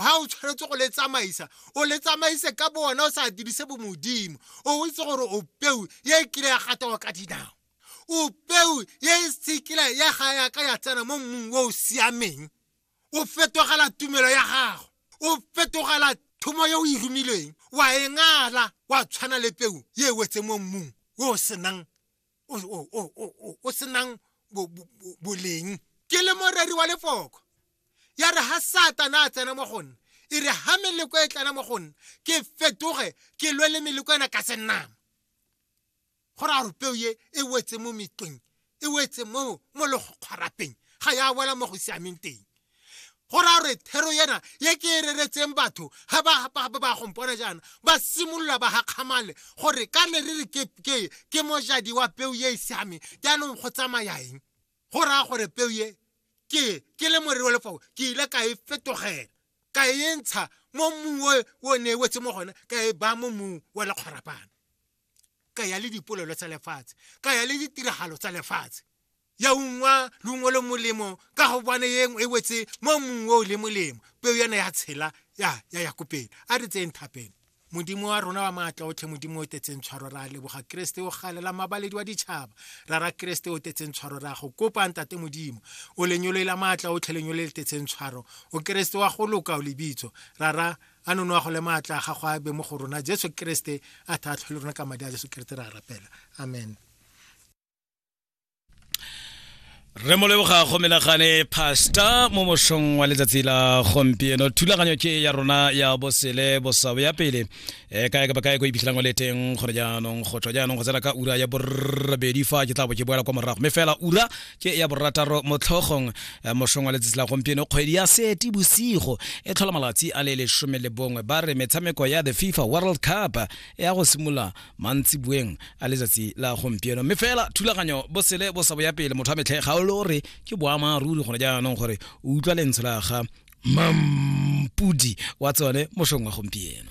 ga o tshwanetse go le tsamaisa o le tsamaise ka bo wena o sa dirise bomodimo o itse gore o peu ye e kile ya gatawa ka dinao o peu ye e sekila ya ga yaka ya tsena mo mmung o o siameng o fetogela tumelo ya gago o fetogela thomo yo o e romilweng wa e ngala wa tshwana le peu ye e wetse mo mmung o o senang o senang boleng ke le moreri wa lefoko ya re ha satana a tsena mo gonna e re ha meleko e tlana mo gonna ke fetoge ke lwe le meleko ena ka senama go raya gore peo ye e wetse mo metlong e wetse mo mo lekgwarapeng ga ya wela mo go siameng teng go raya gore thero ena ye ke e reretseng batho ga ba gompona jaana ba simolola ba gakgamale gore ka ne re re ke mojadi wa peu ye e siame jaanong go tsamayaeng go raya gore peu ye ke ke le morero le fao ke ile ka e fetogela ka e ntsha mo mmung o ne e wetse mo gone ka e baya mo mmung wa lekgwarapana ka ya le dipolelo tsa lefatshe ka ya le ditiragalo tsa lefatshe ya ungwa leungo le molemo ka go bone ye e wetse mo mmung o le molemo peo yana ya tshela ya ya ya kopele a re tseyeng thapelo modimo wa rona wa maatla otlhe modimo o tetseng tshwaro ra leboga keresete o galela mabaledi wa ditšhaba ra ra keresete o tetseng tshwaro ra go kopang tate modimo o lenyolo la maatla otlhe lenyolo le tetseng tshwaro o keresete wa go loka o lebitso ra ra a none wa go le maatla ga go a be mo go rona jesu keresete a thatlhole rona ka madi a jesu keresete ra rapela amen re mo leboga go menagane pasta mo mošong wa letsatsi la gompieno thulaganyo ke ya rona ya bosele bosabo ya pele e eh, kae kapa kae ko iphitlhelang o le teng gone jaanong go tswa jaanong go tsena ka ura ya borobedi fa ke tla bo ke boela kwa morago mme fela ura ke ya borataro mo tlhogong eh, mošong wa letsatsi la gompieno kgwedi ya seti bosigo e tlhola malatsi a le lesome le bongwe ba re metshameko ya the fifa world cup e ya go simolola mantsi boeng a letsatsi la gompieno mme fela thulaganyo bosele bo sa boya pele motho wa metlhe ga o le gore ke boamaruri gone jaanong gore o utlwa lentsho la ga mampudi wa tsone mošong wa gompieno